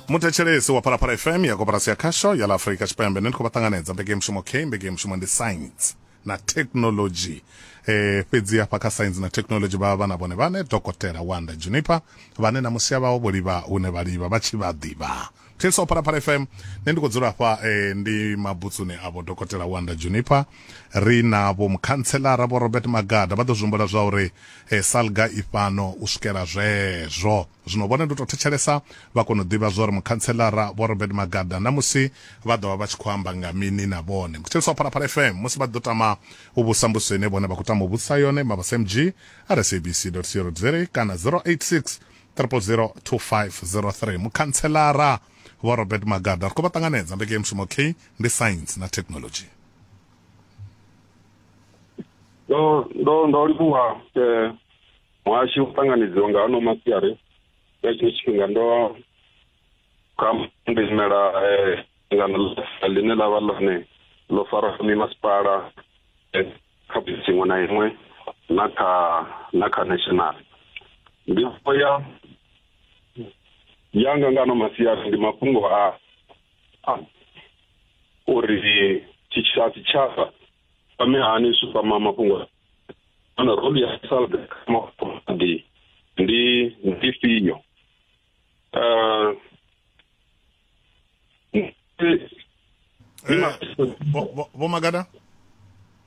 muthetshelesi wa phalaphala fm ya koporasi ya khasho ya la afurika tshipembe ne ndi khou vha ṱanganedza mbekemushumo k mbekemushumo ndi science na technology eh fhedzi hafha kha science na technology vha vha na vhone vhane dokotela wanda juniper vhane na musia vhawo vho livha hune vha livha vha tshi vha ḓivha Thilso Phalaphala FM nṋe ndi khou dzula hafha eh, ndi mabutsuni avho dokotela Wanda Juniper ri na vho mukhantshelara vho Robert Magada vha ḓo zwi humbula zwa uri eh, salga i fhano u swikela zwezwo zwino vhone ndi u tou thetshelesa vha kona u ḓivha zwa uri mukhantshelara vho Robert Magada na musi vha ḓo vha vha tshi khou amba nga mini na vhone Thilso Phalaphala FM musi vha ḓo tama u vhusa mbudziso ine vhone vha khou tama u vhudzisa yone mavhasmg rsabc co za kana 086 0002503 mukhanselara vho robert magada ri khou vha ṱanganedza mbekemushumo k ndi science na technology ndo ndo ndo livhuwa eh, muhashi u ṱanganedziwa nga ano masiari nga tshino tshifhinga ndo kha ndi imela eh, ngano ḽine ḽa vha ḽone ḽo fara mimasipala eh, kha bisi iṅwe na iṅwe na kha na kha national ndi ya yanga nga no masiari ndi mafhungo a uri tshitshavha tshitshavha kwame hani zwi kwama mafhungo ana roli ya salbe kha mafhungo ndi ndi ndi fio Uh, eh, vho magada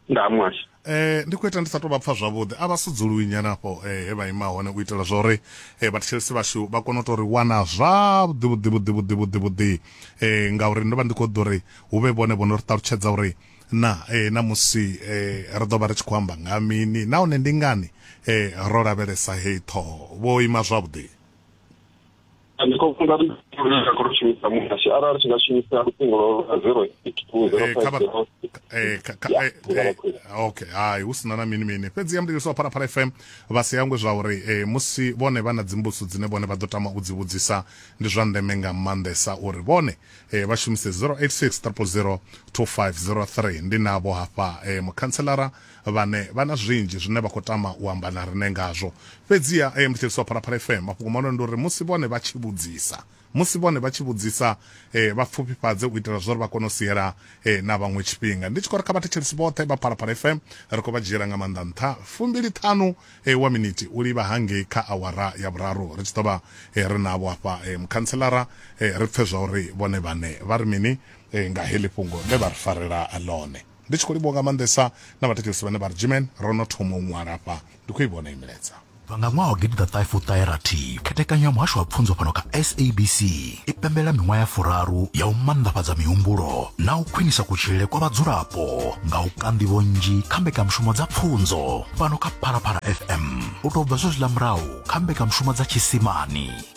nda mwasha eh ndi khou ita ndi sa tou vha pfa zwavhuḓi a vha sudzuluwi nyana afho eh he vha ima hone u itela zwa uri eh vhathetshelesi vhashu vha kone u tou ri wana zwavhuḓi vhuḓi vhuḓi vhuḓi vhuḓi vhuḓi eh ngauri ndo vha ndi khou ḓo ri hu vhe vhone vho no ri ṱalutshedza uri na eh na musi eh ri ḓo vha ri tshi khou amba nga mini nahone ndi ngani eh ro lavhelesa heyi ṱhoho vho ima zwavhuḓi ndi khou funza ri nga khou shumisa muhasho arali tshi nga shumisa luṱingo lwa lwa zero eight two zero Eh, kha five vha- zero Eh, kha- kha- Yeah, eh, ndi nga eh, vha khwine. okay hai hu sina na mini mini fhedzi ya mudivhisi wa phalaphala fm vha si hangwe zwa uri eh, musi vhone vha na dzimbuso dzine vhone vha ḓo tama u dzi vhudzisa ndi zwa ndeme nga maanḓesa uri vhone eh, vha shumise 086 000 2503 ndi navho hafha eh, mukhantselara vhane vha na zwinzhi zwine vha khou tama u amba na riṋe ngazwo. Fhedziha a yo ngo tsheliswa Phalaphala FM. Mafhungo mahulwane ndi uri musi vhone vha tshi vhudzisa, musi vhone vha tshi vhudzisa, vha pfufhifhadze u itela zwa uri vha kone u siela na vhaṅwe tshifhinga. Ndi tshi khou ri kha vhathetshelesi vhoṱhe vha Phalaphala FM, ri khou vha dzhiela nga maanḓa nṱha fumbili ṱhanu wa miniti u livha hangei kha awara ya vhuraru ri tshi ḓo vha ri navho hafha Mukhantselara, ri pfe zwa uri vhone vhaṋe vha ri mini nga heḽi fhungo ḽe vha ri farela ḽone. Ndi tshi khou livhuwa nga maanḓesa na vhathetshelesi vhane vha ri, Gmen, ro no thoma u ṅwala afha. Ndi khou i vhona iyi milaedza. U bva nga ṅwaha wa gidiḓaṱahefuṱaherathi, khethekanyo ya Muhasho wa Pfunzo fhano kha SABC i pembelela miṅwaha ya furaru ya u maanḓafhadza mihumbulo na u khwinisa kutshilele kwa vhadzulapo nga u ka nḓivho nnzhi kha mbekanyamushumo dza pfunzo fhano kha Phalaphala FM u tou bva zwezwiḽa murahu kha mbekanyamushumo dza tshiisimani.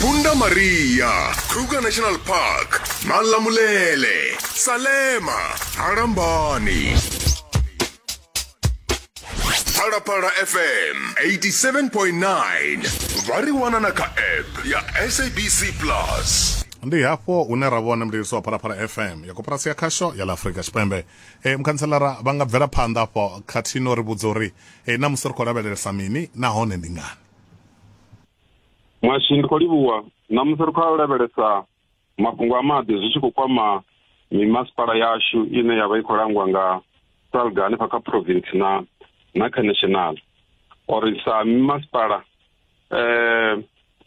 Punda Maria, Kruger National Park, Malamulele, Salema, Harambani. Parapara FM 87.9 vari wana na kha app ya SABC Plus. ndi hafho hune ra vhona mliliso wa phalaphala fm ya koporasi ya khasho ya ḽa afurika tshipembe e, mukhantselara vha nga bvela phanḓa afho khathihi no ri vhudza uri e, na musi ri khou lavhelelesa mini nahone ndi ngani mwashi ndi khou livhuwa ṋamusi ri khou a lavhelesa mafhungo a maḓi zwi tshi khou kwama mimasipala yashu ine ya vha i khou langwa nga salga hanefha kha province na na kha national or sa mimasipala eh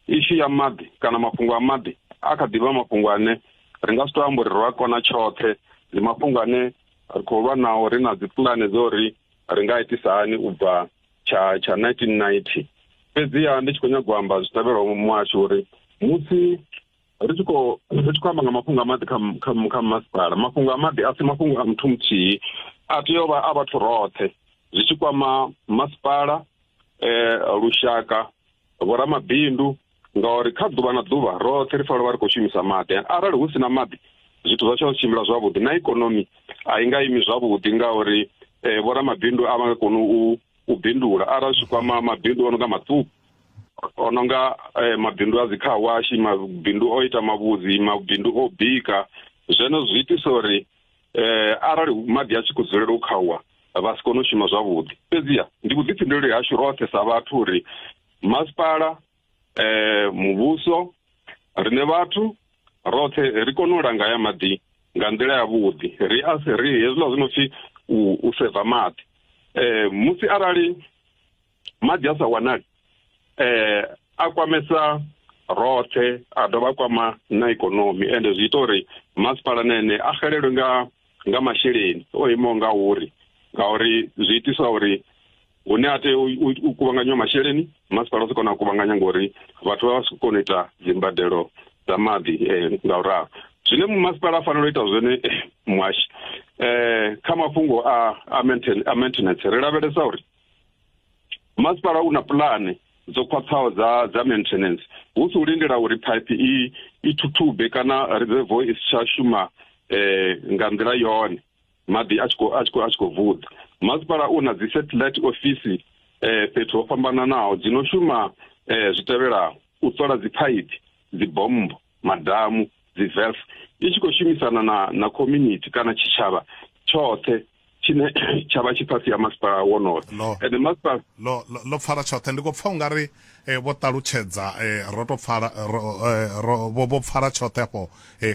ishu ya maḓi kana mafhungo a maḓi a kha ḓivha mafhungo ane ri nga si to amba uri ro a kona tshoṱhe ndi mafhungo ane ri khou lwa nao ri na dzi pulane dzo ri ri nga itisa hani u bva tsha tsha 1990 fhedziha ndi tshi khou nyagwa amba zwi tevhelaho muhasho uri musi ri tshi khou ri tshi khou amba nga mafhungo a maḓi kha kha masipala mafhungo a maḓi a si mafhungo a muthu muthihi a tea u vha a vhathu roṱhe zwi tshi kwama masipala eh lushaka vhoramabindu ngauri kha ḓuvha na ḓuvha roṱhe ri fanela vha ri khou shumisa maḓi arali hu si na maḓi zwithu zwa tsho tshimbila zwavhuḓi na ikonomi a i nga imi zwavhuḓi ngauri um eh, vhoramabindu a vha nga koni u u bindula arali zwi kwama mabindu o no nga maṱuku o no nga eh, mabindu a dzikhawashi mabindu o ita mavhudzi mabindu o bika zweno zwi itisa uri um arali maḓi a tshi khou dzulela u khauwa vha si kone u shuma zwavhuḓi fhedziha ndi vhuḓifhinduleli hashu roṱhe sa vhathu uri masipala eh muvhuso rine vhathu roṱhe ri kone u langa ya maḓi nga nḓila ya vhuḓi ri a se ri hezwiḽa zwi no pfi u seva maḓi eh musi arali maḓi a sa wanali eh a kwamesa roṱhe a dovha a kwama na ikonomi ende zwi ita uri masipala na ene a xelelwe nga nga masheleni o imaho nga uri ngauri zwi itisa uri hune a tea u kuvhanganywa masheleni masipala u si kona u kuvhanganya ngori vhathu vha vha si kona u ita dzimbadelo dza maḓi eh, nga u ralo zwine masipala a fanela u ita zwone eh, muhashi um kha mafhungo a maintenance ri lavhelesa uri masipala u na pulane dzo khwaṱhaho dza dza maintenance hu si u lindela uri pipe i i thuthube kana reservo i si tsha shuma eh nga nḓila yone maḓi a tshi khou a tshi khou a tshi khou vuḓa masipala u na dzi satellite office eh fhethu ho fhambananaho dzi no shuma eh zwi tevhelaho u sola dzi pipe dzi bombo madhamu dzivelf i tshi khou shumisana na na community kana tshitshavha tshoṱhe tshine tsha vha tshi fhasi ya masipala wonoyo ende masipala lo pfala tshoṱhe ndi khou pfa u nga ri eh, vho ṱalutshedza eh, ro to pfala eh, vho pfala tshoṱhe afho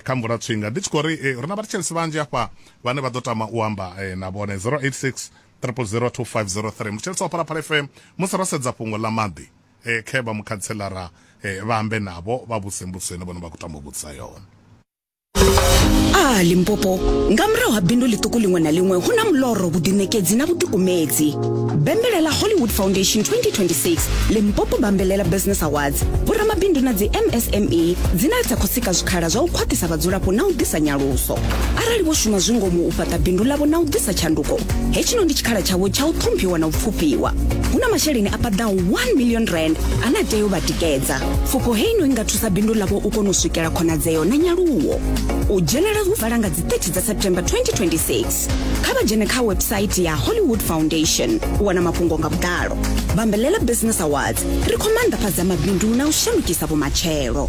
kha mvula tswinga ndi tshi khou ri ri na vhathetshelesi vhanzhi afha vhane vha ḓo tama u amba na vhone 086 3002503 muthetshelesi wa phalaphala fm musi ro sedza fhungo ḽa maḓi eh, khe vha mukhantselara eh, vha ambe navho vha vhuse mbudziso ine vhone vha khou tama u vhudzisa yone a limpopo nga murahu ha bindu ḽiṱuku ḽiṅwe na ḽiṅwe hu na muloro vhuḓiṋekedzi na vhuḓikumedzi bembelela hollywood foundation 2026 limpopo bambelela business awards vhoramabindu na dzi msme dzine dza khou sika zwikhala zwa u khwaṱhisa vhadzulapo na u ḓisa nyaluso arali vho shuma zwi ngomu u fhaṱa bindu ḽavho na u ḓisa tshanduko hetshino ndi tshikhala tshavho tsha u ṱhomphiwa na u pfufhiwa hu na masheleni a paḓa 1 million rand ane a tea u vha tikedza pfufho hei no i nga thusa bindu ḽavho u kona u swikela khonadzeo na nyaluwo u dzhenela hu vala nga dzi 30 dza september 2026 kha vha dzhene kha website ya hollywood foundation u wana mafhungo nga vhuḓalo bambelela business awards ri khou maanḓafhadza mabindu na u shandukisa vhumatshelo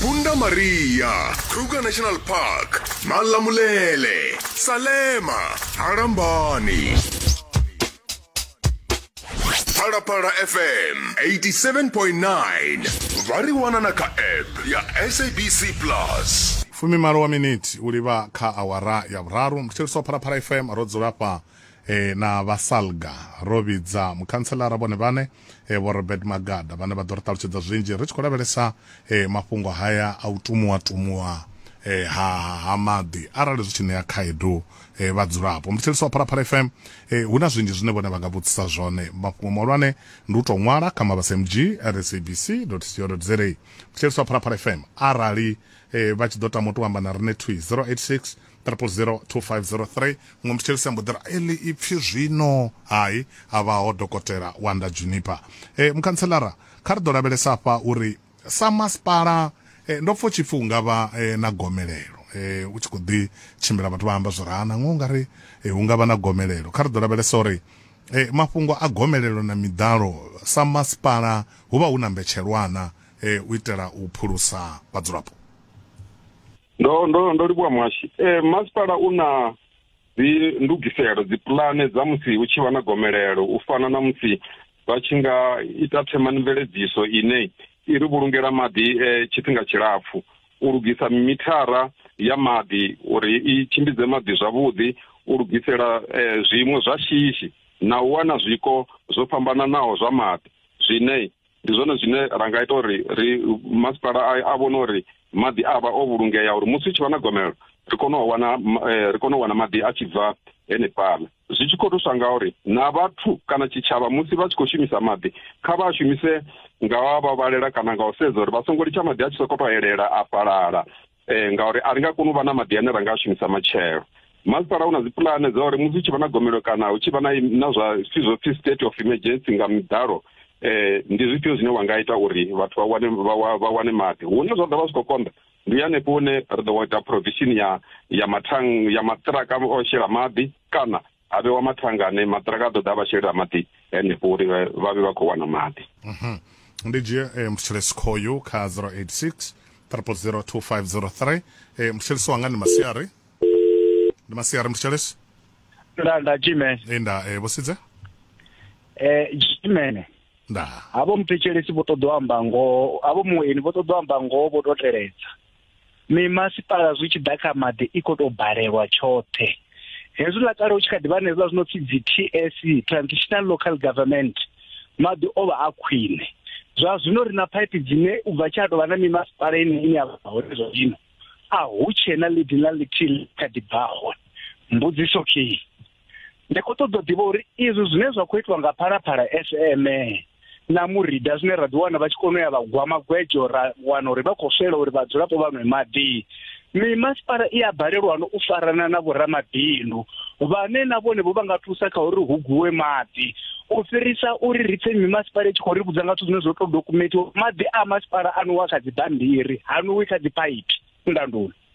Punda Maria, Kruger National Park, Malamulele, Salema, Harambani. Parapara FM 87.9 variwana na ka app ya SABC Plus. fumimalo wa miniti u livha kha awara ya vhuraru muthetshelisi wa phalaphala fm ro dzula fha e, na vha salga ro vhidza mukhantselara vhone vhane e, vho robert magada vhane vha ḓo ri ṱalutshedza zwinzhi ri tshi khou lavhelesa e, mafhungo haya a u tumuwa tumuwa e, ha, ha maḓi arali zwi tshi ṋea khaedu e, vhadzulapo ndi tshiliso wa phalaphala fm e, hu na zwinzhi zwine vhone vha nga vhudzisa zwone mafhungo mahulwane ndi u tou ṅwala kha mabasa mg at sabc co za ndi tshiliso wa phalaphala fm arali e, vha tshi ḓo tama u tou amba na rine twi 086 Triple zero two five zero three muṅwe muthetshelesi a mbo ḓi ri eli ipfhi zwino hai a vhaho dokotela wanda juniper e, mukhantselara kha ri ḓo lavhelesa afha uri sa masipala e, ndo pfha u tshi pfhi unga vha e, na gomelelo e, u tshi khou ḓi tshimbila vhathu vha amba zwi ri ha nangwe ungari e, hu nga vha na gomelelo kha ri ḓo lavhelesa uri e, mafhungo a gomelelo na miḓalo sa masipala hu vha hu na mbetshelwana e, u itela u phulusa vhadzulapo ndo ndo ndo livhuwa muhashi eh, masipala u na dzi ndugiselo dzi pulane dza musi hu tshi vha na gomelelo u fana na musi vha tshi nga ita themani mveledziso ine i ri vhulungela maḓi eh, tshifhinga tshilapfu u lugisa mithara ya maḓi uri i tshimbidze maḓi zwavhuḓi u lugisela eh, zwiimo zwa shishi na u wana zwiko zwo fhambananaho zwa maḓi zwine ndi zwone zwine ra nga ita uri ri masipala a vhone uri maḓi a vha o vhulungea uri musi hu tshi vha na gomelelo ri kone u wana eh, ri kone u wana maḓi a tshi bva henefhala zwi tshi khou thusa nga uri na vhathu kana tshitshavha musi vha tshi khou shumisa maḓi kha vha a shumise nga wa vha vhalela kana nga u sedza uri vha songo litsha maḓi a tshi sokoto elela a fhalala eh, ngauri a ri nga koni u vha na maḓi ane ra nga a shumisa matshelo masipala u na dzipulane dza uri musi hu tshi vha na gomelo kana hu tshi vha na na zwa zwithu zwo pfhi state of emergency nga miḓalo eh ndi zwifhio zwine wa nga ita uri vhathu vha wane vha wa- vha wane maḓi hune zwa ḓovha zwi khou konḓa ndi hanefho hune ri ḓo ita provision ya ya mathang ya maṱiraka o shela maḓi kana ha vhewa mathanga ane maṱiraka a ḓo ḓa vha shelela maḓi henefho uri vha vhe vha khou wana maḓi mhm. ndi dzhie um eh, muthelesi khoyu kha 086 3002503 um eh, muthelesi wanga ndi masiari ndi masiari muthelesi nda nda jimene e eh, nda um vhosidze um jimene nda havho muthetshelesi vho ṱoḓa u amba ngoho havho mueni vho ṱoḓa u amba ngoho vho tou teledza mimasipala zwi tshi ḓa kha maḓi i khou tou balelwa tshoṱhe hezwiḽa kale u tshi kha ḓi vha na hezwiḽa zwi no pfi dzi t s e, transitional local government maḓi o vha a khwine zwa zwino ri na phaiphi dzine u bva tsha tou vha na mimasipala ine ine ya vha hone zwa zwino a hu tshee na leading la lithihi kha ḓi bva hone mbudziso kei ndi khou ṱoḓa u ḓivha uri izwi zwine zwa khou itiwa nga phalaphala fm na murida zwine ra ḓiwana vha tshi kona u ya vha gwa magwedzo ra wana uri vha khou swela uri vhadzulapo vha nwe maḓi mimasipala i a balelwano u farana na vhoramabindu vhane na vhone vho vha nga thusa kha uri hu guwe maḓi u fhirisa uri ri pfe mimasipala i tshi khou ri vhudza nga zwithu zwine zwo to dokumentiwa maḓi a masipala a nowa kha dzibammbiri ha nowi kha dziphaiphi nda nduni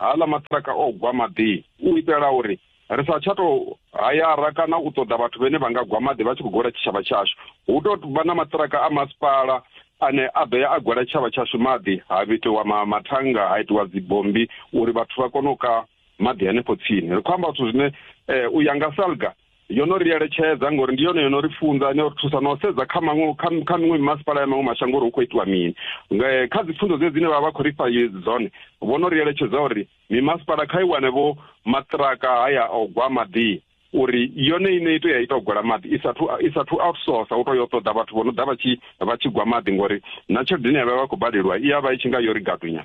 Haaḽa maṱiraka o gwa maḓini u itela uri ri sa tsha tou hayara kana u ṱoḓa vhathu vhene vha nga gwa maḓi vha tshi khou gwela tshitshavha tshashu. Hu tou vha na maṱiraka a masipala ane a ḓo ya a gwela tshitshavha tshashu maḓi, ha vhitiwa mathannga, ha itiwa dzibommbi uri vhathu vha kone u ka maḓi hanefho tsini. Ri khou amba zwithu zwine eh, u ya nga SALGA yo no ri eletshedza ngori ndi yone yo no ri funza no ri thusa no sedza kha maṅwe kha miṅwe mimasipala ya maṅwe mashango uri hu khou itiwa mini kha dzi pfunzo dze dzine vha vha khou ri fha dzone vho no ri eletshedza uri mimasipala kha i wane vho maṱiraka haya o gwa maḓi uri yone ine ito ya ita u gwela maḓi isathu isathu outsource u to yo ṱoḓa vhathu vho no ḓa vha tshi vha tshi gwa maḓi ngori na tshelede ine ya vha vha khou badeliwa i ya vha i tshi nga yo ri gadunya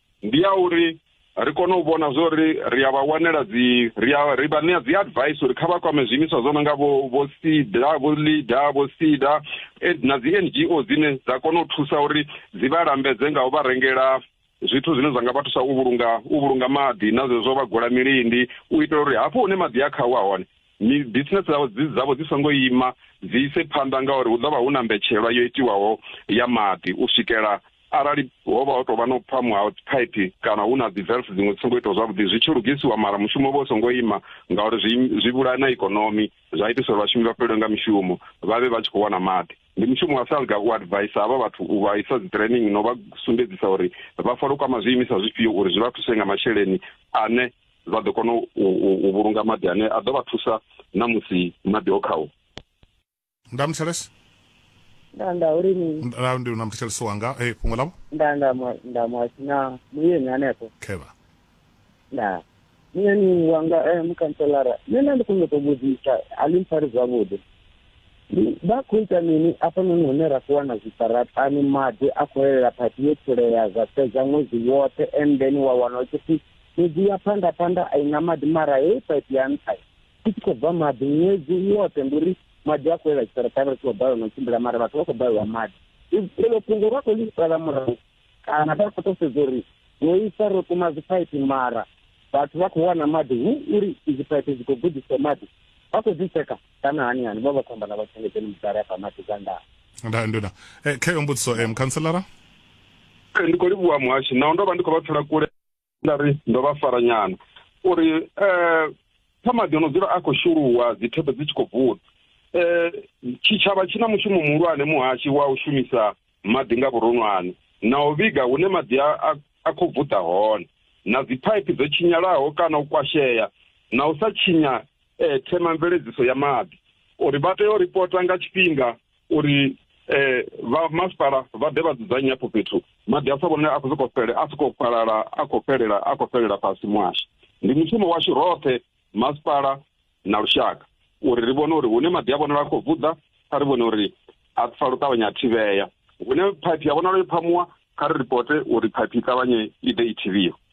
ndi ya uri ri kone u vhona zwo ri ri a vha wanela dzi ri a ri vha ṋea dzi advice uri kha vha kwame zwiimiswa zwo no nga vho vho sida vho leader vho sida eh, na dzi n g o dzine dza kona u thusa uri dzi vha lambedze nga u vha rengela zwithu zwine zwa nga vha thusa u vhulunga u vhulunga maḓi na zwezwo vha gola milindi u itela uri hafho hune maḓi a khawa hone mi business dzavho dzi dzavho dzi songo ima dzi ise phanḓa ngauri hu ḓovha hu na mbetshelwa yo itiwaho ya maḓi u swikela arali ho vha ho tou vha no pfa mu out pipe kana hu na dzi valve dziṅwe dzi songo itiwa zwavhuḓi zwi tshi lugisiwa mara mushumo vho songo ima ngauri zwi zwi vhulaya na ikonomi zwa itisa uri vhashumi vha fhelelwe nga mishumo vha vhe vha tshi khou wana maḓi ndi mushumo wa salga u advice havha vhathu u vha isa dzi training no vha sumbedzisa uri vha fanela u kwama zwiimiswa zwifhio uri zwi vha thuse nga masheleni ane vha ḓo kona u vhulunga maḓi ane a ḓo vha thusa na musi maḓi o khawo nda muthelesi nda nda uri ni nda ndi na muthelesi wanga eh fhungo ḽavho nda nda nda mwasi na muyeni hanefho khevha nda muyeni wanga eh mukhanselara nṋe nda ndi kone u tou vhudzisa a ḽi mpfari zwavhuḓi vha khou ita mini afhanoni hune ra khou wana zwiṱaraṱani maḓi a khou elela phathi yo pfulea zwa fhedza ṅwedzi woṱhe and then wa wana u tshi pfhi Fhedzi ya phanḓa phanḓa a i na maḓi mara heyi paipi ya nṱha i tshi khou bva maḓi ṅwedzi woṱhe ndi uri maḓi a khou ela tshiṱaratani ri tshi khou balelwa na u tshimbila mara vhathu vha khou balelwa maḓi elo fhungo vha khou ḽi sala murahu kana vha khou tou sedza uri ro isa ro kuma dzipaipi mara vhathu vha khou wana maḓi hu uri izi paipi dzi khou gudisa maḓi vha khou dzi tsheka kana hani hani vha vha khou amba na vhatshengedzeni mudala afha maḓi dza ndaa nda nduna eh, khayo mbudziso eh, mukhanselara eh, ndi khou livhuwa muhashi naho ndo vha ndi khou vha pfela kule nda ri ndo vha fara nyana uri eh kha maḓi ono dzula a khou shuluwa dzithepe dzi tshi khou bvuda eh tshitshavha tshi na mushumo muhulwane muhashi wa u shumisa maḓi nga vhuronwane na u vhiga hune maḓi a khou bvuda hone na dziphaiphi dzo tshinyalaho kana u kwashea na u sa tshinya eh themamveledziso ya maḓi uri vha tea u ripota nga tshifhinga uri eh vha masipala vha ḓe vha dzudzanye hafho fhethu maḓi a sa vhone a khou sokou fhele a sokou fhalala a khou fhelela a khou fhelela fhasi muhasho ndi mushumo washu roṱhe masipala na lushaka uri ri vhone uri hune maḓi a vhonala a khou vuḓa kha ri vhone uri a pfa lu ṱavhanya a thivhea hune phaiphi ya vhonala yo phamuwa kha ri ripote uri phaiphi i ṱavhanye i ḓe i thivhiwe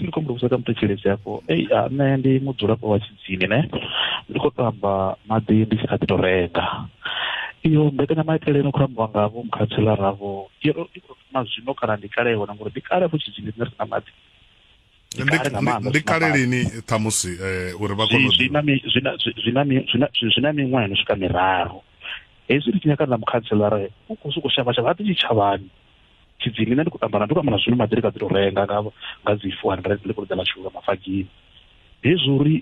ndi khou muvhudza kha muthetshelesi afho ei nṋe ndi mudzulapo wa tshidzini ne ndi khou tamba maḓi ndi tshi kha ḓi to renga iyo mbekanyamaitele ino khou ambiwa nga vho mukhathilara vho i khou thoma zwino kana ndi kale hone ngori ndi kale fo tshidzini rine ri na maḓi ndi kale lini ṱhamusi eh, uri vha kone zwi na miṅwaha ino swika miraru hezwi ri tshi nyaka na mukhathilara u khou sokou shavha shavha a ḓi tshitshavhani tshidzini nṋe ndi khou tamba na ndo tamba na zwino maḓirika dzi to renga nga nga dzi four hundred ndi khou ḽidza ḽa shulula mafagini hezwi uri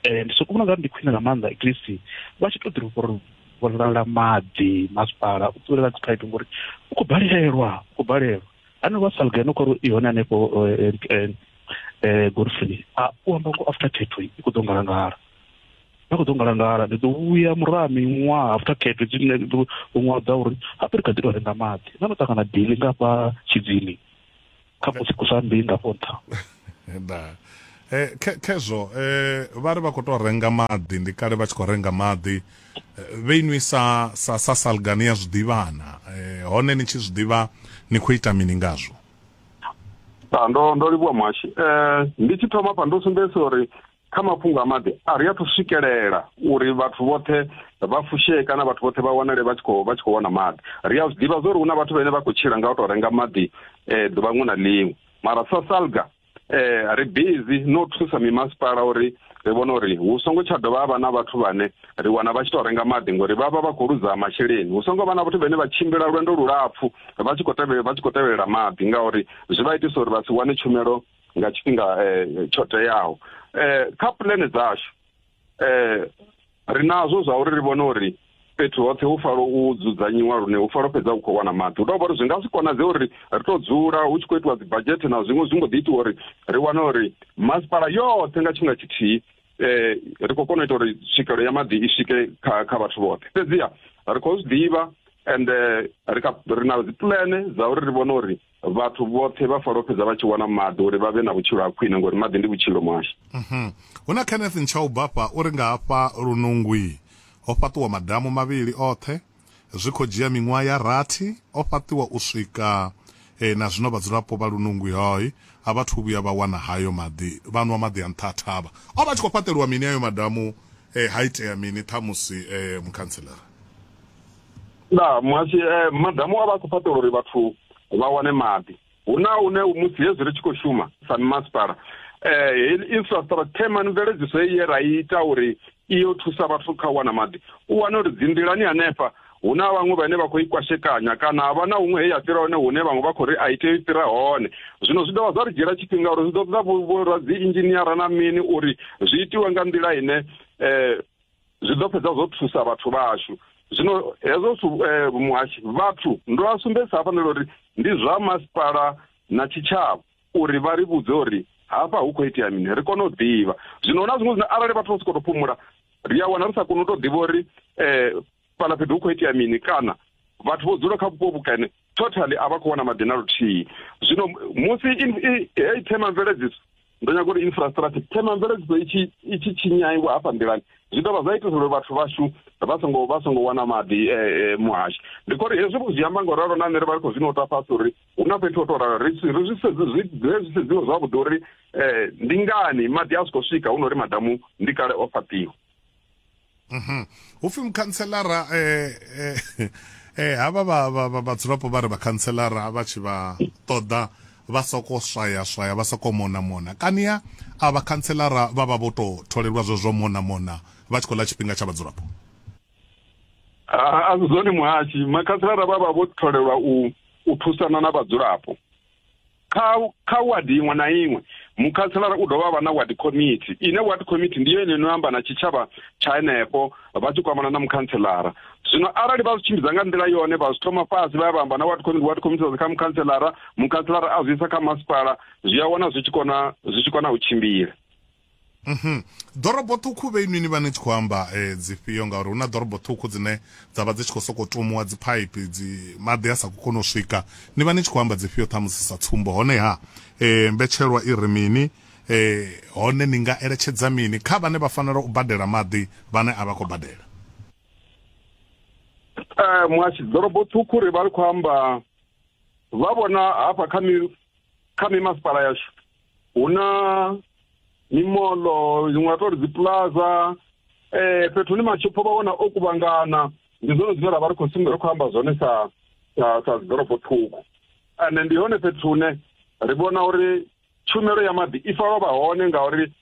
um ndi soko vhona nga ndi khwine nga maanḓa at least vha tshi to ḓi ruvhololela maḓi masipala u ṱulela dzi phaipi ngori u khou balelwa u khou balelwa haneo vha salga no khori i hone hanefho um golfini a u amba ngo after thirty i khou ḓo ngalangala na khou ḓo ngalangala ndi ḓo vhuya muraha miṅwaha after khetho dzine ḓo ṅwaha dza uri hape ri kha ḓi tou renga maḓi na no ṱangana dili nga fha tshidzini kha musi ku sa mbei nga fho nṱha eh, khezwo eh, vha ri vha khou tou renga maḓi ndi kale vha tshi khou renga maḓi eh, vhe inwi sa sa sa salgani ya zwiḓivhana hone ni tshi zwiḓivha ni khou ita mini ngazwo ndo ndo livhuwa mwashi um ndi tshi thoma pa ndo sumbedzisa uri kha mafhungo a maḓi a ri a thu swikelela uri vhathu vhoṱhe vha fushee kana vhathu vhoṱhe vha wanale vha tshi khou vha tshi khou wana maḓi ri a zwi ḓivha zwa uri hu na vhathu vhane vha khou tshila nga u tou renga maḓi um ḓuvha ṅwe na ḽiṅwe mara sa salga um ri busy no thusa mimasipala uri ri vhone uri hu songo tsha dovha vha na vhathu vhane ri wana vha tshi tou renga maḓi ngori vha vha vha khou luza masheleni hu songo vha na vhathu vhane vha tshimbila lwendo lulapfu vha tshi khou tevhela vha tshi khou tevhelela maḓi ngauri zwi vha itisa uri vha si wane tshumelo nga tshifhinga eh, tsho teaho eh, kha pulane dzashu eh, ri nazwo zwa uri ri vhone uri fhethu hoṱhe hu falo u dzudzanyiwa lune hu falo fhedza u khou wana maḓi hu tou vha uri zwi nga si konadze uri ri tou dzula hu tshi khou itiwa dzibadzhete na zwiṅwe zwi mbo ḓi itiwa uri ri wane uri masipala yoṱhe nga tshifhinga tshithihi eh ri khou kona u ita uri tswikelo ya maḓi i swike kha kha vhathu vhoṱhe fhedziha ri khou zwi ḓivha and eh, ri kha- ri na dzipulane dza uri ri vhone uri vhathu vhoṱhe vha falo fhedza vha tshi wana maḓi uri vha vhe na vhutshilo ha khwine ngori maḓi ndi vhutshilo mwasha mhm. hu na kenneth ntshaubafha uri nga hafha lunungwi ho fhaṱiwa madamu mavhili oṱhe zwi khou dzhia miṅwaha ya rathi o fhaṱiwa u swika e, na zwino vhadzulapo vha lunungwi hoi a vha thu vhuya vha wana hayo maḓi vha nwa maḓi a nṱha thavha o vha tshi khou fhaṱeliwa mini ayo madamu e, ha itea mini ṱhamusi e, mukhantselara nda muhasi eh, madamu a vha a khou fhaṱela uri vhathu vha wane maḓi hu na une musi hezwi ri tshi khou shuma sa mimasipala um infrastructure mani mveledziso heyi ye ra ita uri iyo thusa vhathu kha u wana maḓi u wane uri dzinḓilani hanefha hu na vhaṅwe vhane vha khou i kwashekanya kana ha vha na huṅwe he ya fhira hone hune vhaṅwe vha khou ri a i tei fhira hone zwino zwi dovha zwa ri dzhiela tshifhinga uri zwi ḓo ṱoḓa vhora dzi inzhiniara na mini uri zwi itiwe nga nḓila ine um zwi ḓo fhedza zwo thusa vhathu vhashu zwino hezwo zwithu eh, muhashi vhathu ndo a sumbedzisa hafhanelo uri ndi zwa masipala na tshitshavha uri vha ri vhudze uri hafha hu khou itea mini ri kone u ḓivha zwino na zwiṅwe zwine arali vhathu vha si khou tou phumula ri a wana ri sa koni u tou ḓivha uri um fhala fhethu hu khou itea mini kana vhathu vho dzula kha vhupo vhukene totally a vha khou wana maḓi na luthihi zwino musi heyi themamveledziso ndo nyaga uri infrastructure themamveledziso itshi itshi tshinyaiwa hafha nḓilani zwi dovha zwa itisa uri vhathu vhashu vha songo vha songo wana maḓi eh, eh, muhashi ndi khori hezwi vho zwi amba nga ralo na nṋe ri vha ri khou zwino ta fhasi uri hu na fhethu ho to ralo ri zwi sedzi zwi zwi sedziwa zwavhuḓi uri um ndi ngani maḓi a si khou swika hu na uri madamu ndi kale o fhaṱiwa mhm. hupfi mukhantselara um eh, eh, eh, havha vhadzulapo vha ri vhakhantselara vha tshi vha ṱoḓa vha soko swaya swaya vha soko mona mona kania a vhakhantselara vha vha vho tou tholelwa zwo zwo mona mona vha tshi khou ḽa tshifhinga tsha vhadzulapo a zwi zwone muhashi makhantselara vha vha vho tholelwa u u thusana na vhadzulapo kha kha wadi iṅwe na iṅwe mukhanselara u dovha vha na ward committee ine ward committee ndi yone ino amba na tshitshavha tsha henefho vha tshi kwamana na mukhanselara zwino arali vha zwi tshimbidza nga nḓila yone vha zwi thoma fhasi vha ya vha amba na ward committee ward committee kha mukhanselara mukhanselara a zwi isa kha masipala zwi a wana zwi tshi kona zwi tshi kona u tshimbila Mhm. Ḓorobo ṱhukhu vhe inwi ni vha ni tshi khou amba eh, dzifhio ngauri hu na ḓorobo ṱhukhu dzine dza vha dzi tshi khou sokou tumuwa dziphaiphi dzi maḓi a sa khou kona u swika ni vha ni tshi khou amba dzifhio ṱhamusi sa tsumbo honeha eh, mbetshelwa i ri mini eh, hone ni nga eletshedza mini kha vhane vha fanela u badela maḓi vhane a vha khou badela Eh, muhashi ḓorobo ṱhukhu ri vha ri khou amba vha vhona hafha kha mi kha mimasipala yashu hu na mimoḽo zwi nga tou ri dziplaza um eh, fhethu hune mashopho vha wana o kuvhangana ndi zwone zwine ra vha ri khou sumbe ri khou amba zwone sa sa sa dziḓorobo ṱhukhu ande ndi hone fhethu hune ri vhona uri tshumelo ya maḓi i fanela vha hone ngauri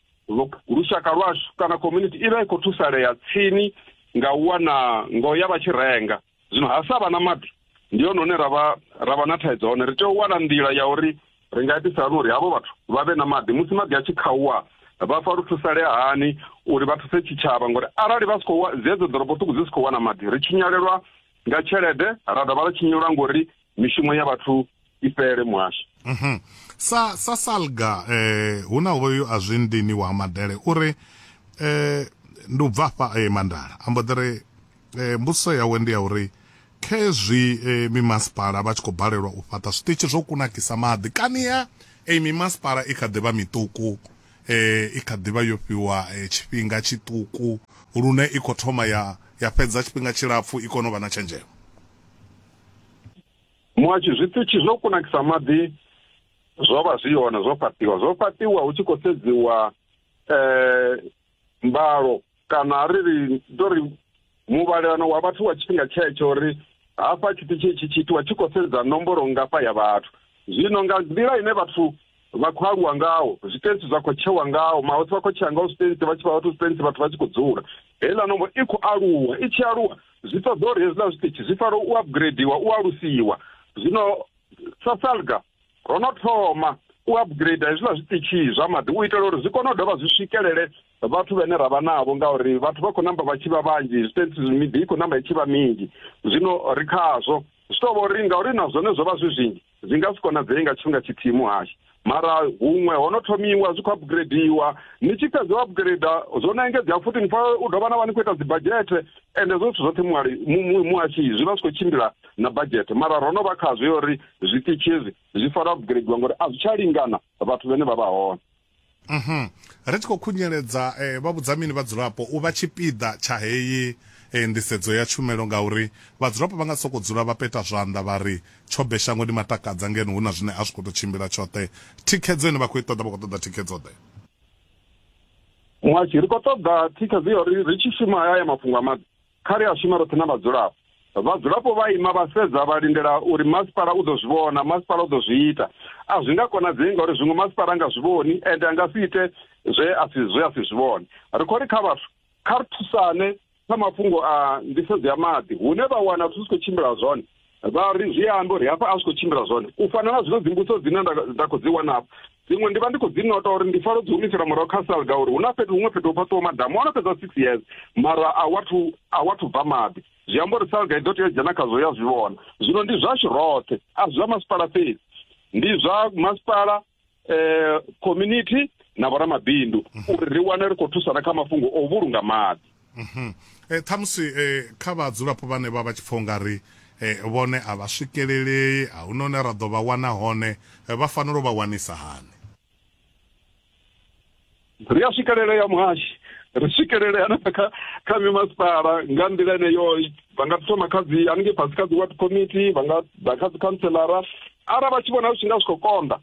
lushaka lwashu kana community i vha i khou thusalea tsini nga u wana ngo ya vha tshi renga zwino ha sa vha na maḓi ndi hone hune ra vha ra vha na thaidzo hone ri tea u wana nḓila ya uri ri nga itisa hani uri havho vhathu vha vhe na maḓi musi maḓi a tshi khauwa vha pfa lu thusalea hani uri vha thuse tshitshavha ngori arali vha si khou zedzo ḓorobo ṱhukhu dzi si khou wana maḓi ri tshinyalelwa nga tshelede ra dovha ra tshinyelwa ngori mishumo ya vhathu i fhele muhasho mm -hmm. sa sa salga eh hu na hoyu a zwi ndini wa madele uri eh ndi u bva fha eh, mandala ambo ḓere eh, mbuso yawe ndi ya uri khezwi eh, mimasipala vha tshi khou balelwa u fhaṱa zwiṱitshi zwo kunakisa maḓi kani ya eh, mimasipala i kha ḓivha miṱuku eh, i kha ḓivha yo fhiwa eh, tshifhinga tshiṱuku lune i khou thoma ya ya fhedza tshifhinga tshilapfu i kone u vha na tshenzhemo muhashi zwiṱitshi zwo kunakisa maḓi zwo vha zwi hone zwo fhaṱiwa zwo fhaṱiwa hu tshi khou sedziwa um mbalo kana ri ri to ri muvhalelano wa vhathu wa tshifhinga tshetsho uri hafha tshiṱitshi tshi tshi itiwa tshi khou sedza nomboro ngafha ya vhathu zwino nga nḓila ine vhathu vha khou aluwa ngao zwitentsi zwa khou tshewa ngao mahosi vha khou tshea ngao zwitentsi vha tshi vha vhathu zwitentsi vhathu vha tshi khou dzula heiḽa nombo i khou aluwa i tshi aluwa zwi ṱoḓa uri hezwiḽa zwiṱitshi zwi fanela u upgradeiwa u alusiwa zwino sa salga ro no thoma u upgrade hezwiḽa zwiṱitshi zwa maḓi u itela uri zwi kone u dovha zwi swikelele vhathu vhane ra vha navho ngauri vhathu vha khou namba vha tshi vha vhanzhi zwitentsi miḓi i khou namba i tshi vha minzhi zwino ri khazwo zwi tou vha uri ngauri na zwone zwo vha zwi zwinzhi Zwi nga si konadzei nga tshifhinga tshithihi muhashi mara huṅwe ho no thomiwa zwi khou upgradeiwa ni tshi fhedza u upgrada zwo no engedzea futhi ni pfa u dovha na vha ni khou ita dzibadzhete ende zwo zwithu zwoṱhe muhali muhashi zwi vha zwi khou tshimbila na badzhete mara ro no vha khazwo yo uri zwiṱitshi hezwi zwi fanela upgradeiwa ngori a zwi tsha lingana vhathu vhene vha vha hone Mhm. Ri tshi khou khunyeledza eh, vha vhudza mini vhadzulapo u vha tshipiḓa tsha heyi eh, nḓisedzo ya tshumelo ngauri vhadzulapo vha nga sokou dzula vha peta zwanḓa vha ri tshobe shangoni matakadza ngeno hu na zwine a zwi khou tou tshimbila tshoṱhe. Thikhedzo ine vha khou i ṱoḓa vha khou ṱoḓa thikhedzo ḓe? Muhashi, ri khou ṱoḓa thikhedzo ya uri ri tshi shuma haya mafhungo a maḓi Kha ri a shuma roṱhe na vhadzulapo. Vhadzulapo vha ima vha sedza vha lindela uri masipala u ḓo zwi vhona, masipala u ḓo zwi ita. A zwi nga konadzei ngauri zwiṅwe masipala a nga zwi vhoni ende a nga si ite zwe a si zwe a si zwi vhone. Ri khou ri kha vhathu kha ri thusane kha mafhungo a nḓisedzo ya maḓi hune vha wana zwithu zwi khou tshimbila zwone vha ri zwi ambe uri hafha a zwi khou tshimbila zwone u fana na zwino dzimbuso dzine nda khou dzi wana hafha dziṅwe ndi vha ndi khou dzi nota uri ndi falo dzi humisela murahu kha salga uri hu na fhethu huṅwe fhethu ho fhaṱiwa madamu ono fhedza six years mara a wathu a wathu bva maḓi zwi amba uri salga i ḓo tea u dzhena khazwo ya zwi vhona zwino ndi zwashu roṱhe a zwi zwa masipala fhedzi ndi zwa masipala eh community na vhoramabindu mhm. uri ri wane ri khou thusana kha mafhungo o vhulunga maḓi mhm. eh, ṱhamusi eh, kha vhadzulapo vhane vha vha tshi pfha ungari eh, vhone a vha swikelelei a hu none ra ḓo vha wana hone vha fanela u vha wanisa hani ri a swikelelea muhashi ri swikelelea na kha kha mimasipala nga nḓila eneyo vha nga thoma kha dzi haningei fhasi kha dzi ward committee vha nga ḓa kha dzi councilara arali vha tshi vhona zwi tshi nga zwi khou konḓa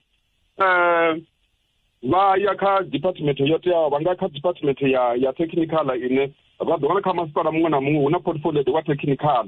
um vha ya kha department yo teaho vha nga kha department ya ya technical ine vha ḓo wana kha masipala muṅwe na muṅwe hu na portfolio wa technical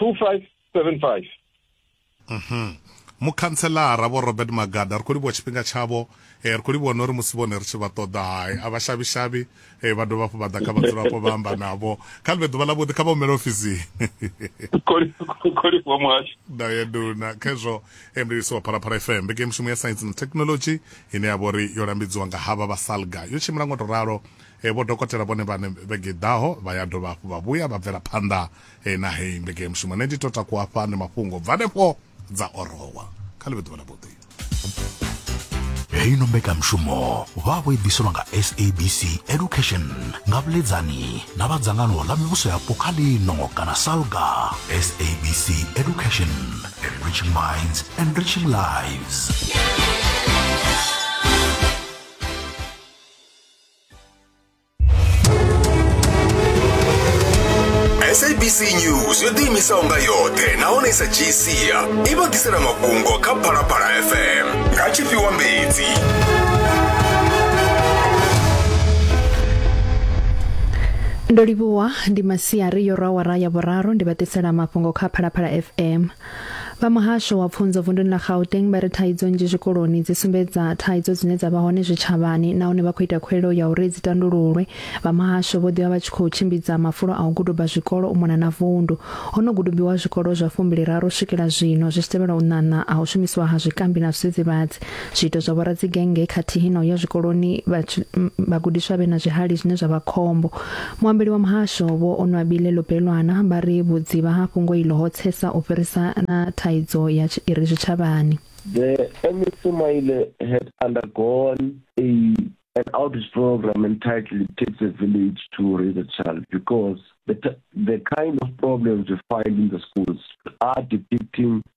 2575 mhm mukhantselara vho robert magada ri khou livhuwa tshifhinga tshavho eh, ri khou livhuwa na uri musi vhone ri tshi vha ṱoḓa hai a vhashavhishavhi eh, vha dovha hafhu vha ḓa kha vhadzulapo vha amba navho kha ḽivhe ḓuvha ḽavhuḓi kha vha humele ofisini da ya duna khezwo emlilisi wa phalaphala fm mbeke mushumo ya science na technology ine ya vha uri yo lambidziwa nga havha vha salga yo tshimbila ngo to ralo Vho dokotela vhone vhaṋe vhege i ḓaho vha ya dovha hafhu vha vhuya vha bvela phanḓa na heyi mbekanyamushumo. Nṋe ndi to takuwa hafha ndi mafhungo bva hanefho dza orowa. Kha ḽi vhe ḓuvha ḽa vhuḓi. Heyi no mbekanyamushumo vha vho i ḓiselwa nga SABC Education nga vhuledzani na vha dzangano ḽa mivhuso yapo kha ḽino kana SALGA. SABC Education, enriching minds, enriching lives. sabc news yo ḓiimisaho nga yoṱhe nahone i sa dzhii sia i vha ḓisela mafhungo kha phalaphala fm nga tshifhiwa mbedzi ndo livhuwa ndi masiari yo rwa wara ya vhuraru ndi vha ḓisela mafhungo kha phalaphala fm Vha muhasho wa pfunzo vunduni ḽa Gauteng vha ri thaidzo nnzhi zwikoloni dzi sumbedza thaidzo dzine dza vha hone zwitshavhani nahone vha khou ita khuweleo ya uri dzi tandululwe. Vha muhasho vho ḓivha vha tshi khou tshimbidza mafulo a u guduba zwikolo u mona na vundu. Ho no gudubiwa zwikolo zwa fumbili raru u swikela zwino zwi tshi tevhelwa u ṋaṋa ha u shumisiwa ha zwikambi na zwidzidzivhadzi. zwiito zwa vhoradzi-genge khathihi na u ya zwikoloni vhagudiswa vhe na zwihali zwine zwa vha khombo. Muambeli wa muhasho vho Onwabile Lopelwana vha ri vhudzivha ha fhungo iḽo ho tsesa u fhirisa na thaidzo ya i re zwitshavhani. The MEC Sumaile had undergone a an outreach program entitled It Takes a Village to Raise a Child because the, the kind of problems we find in the schools are depicting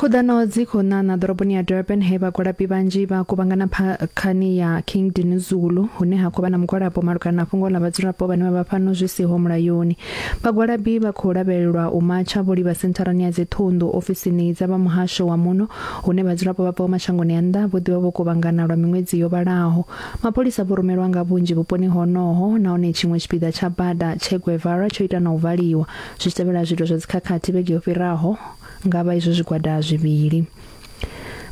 khuḓano dzi khou ṋaṋa ḓoroboni ya durban he vhagwalabi vhanzhi vha kuvhangana phakhani ya king dinuzulu hune ha khou vha na mugwalabo malugana na fhungo ḽa vhadzulapo vhane vha vha fhano zwi siho mulayoni vhagwalabi vha khou lavhelelwa u matsha vho livha sentharani ya dziṱhunḓu ofisini dza vha muhasho wa muno hune vhadzulapo vha bvaho mashangoni a nnḓa vho ḓivha vho kuvhangana lwa miṅwedzi yo vhalaho mapholisa vho rumelwa nga vhunzhi vhuponi honoho nahone tshiṅwe tshipiḓa tsha bada tshe guevara tsho ita na u valiwa zwi tshi tevhela zwiito zwa dzikhakhathi vhege yo fhiraho nga vha izwo zwigwada zwivhili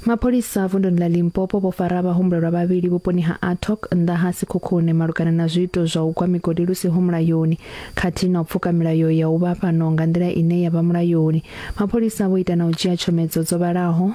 mapholisa vunduni ḽa limpopo vho fara vhahumbulelwa vhavhili vhuponi ha atok nnḓa ha sikhukhune malugana na zwiito zwa u gwa migodi lu siho mulayoni khathihi na u pfuka milayo ya u vha fhano nga nḓila ine ya vha mulayoni mapholisa vho ita na u dzhia tshomedzo dzo vhalaho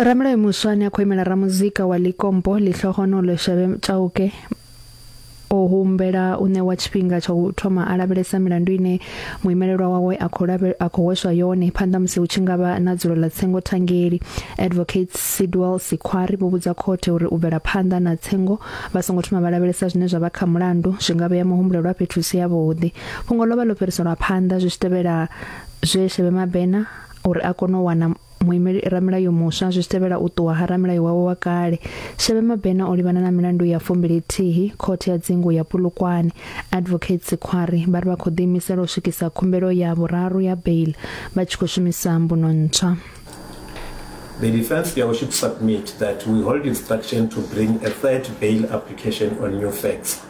ramulayo muswa ane a khou imela ramuzika wa likompo ḽihlohonolo shavhe tshauke o humbela u ṋewa tshifhinga tsha u thoma a lavhelesa milandu ine muimelelwa wawe a khou a khou hweswa yone phanḓa musi hu tshi ngavha na dzulo ḽa tsengo thangeli advocate Sidwell Sikhwari vho vhudza khothe uri u bvela phanḓa na tsengo vha songo thoma vha lavhelesa zwine zwa vha kha mulandu zwi nga vhea muhumbulelwa fhethu si ya vhuḓi fhungo ḽo vha ḽo fhiriselwa phanḓa zwi tshi tevhela zwe Shebe Mabena uri a kone u wana muimeli ramulayo muswa zwi tshi tevhela u ṱuwa ha ramulayo wawe wa kale shebe mabena o livhana na milandu ya fumbili thihi khothe ya dzingu ya pulukwane advocate sikhwari vha ri vha khou ḓiimisela u swikisa khumbelo ya vhuraru ya bail vha tshi khou shumisa mbuno ntswa The defense here should submit that we hold instruction to bring a third bail application on new facts.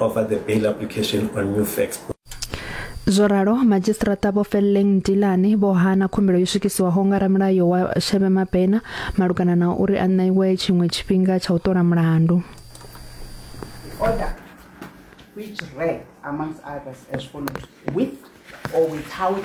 over the bail application on new facts. Zwo ralo madzhisiṱiraṱa vho Felleng Dilane vho hana khumbelo yo swikiswaho nga ramulayo wa Shebe Mabena malugana na uri a ṋeiwe tshiṅwe tshifhinga tsha u ṱola mulandu. Order which read amongst others as follows with or without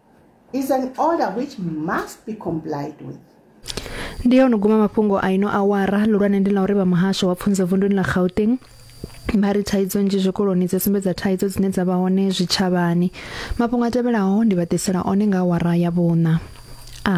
is an order which must be complied with. ndi ya o no guma mafhungo a ino awara lulwane ndi ḽa uri vha muhasho wa pfunzo vunduni ḽa gauteng vha ri thaidzo nzhi zwikoloni dzi sumbedza thaidzo dzine dza vha hone zwitshavhani mafhungo a tevhelaho ndi vha ḓisela one nga awara ya vhuṋa a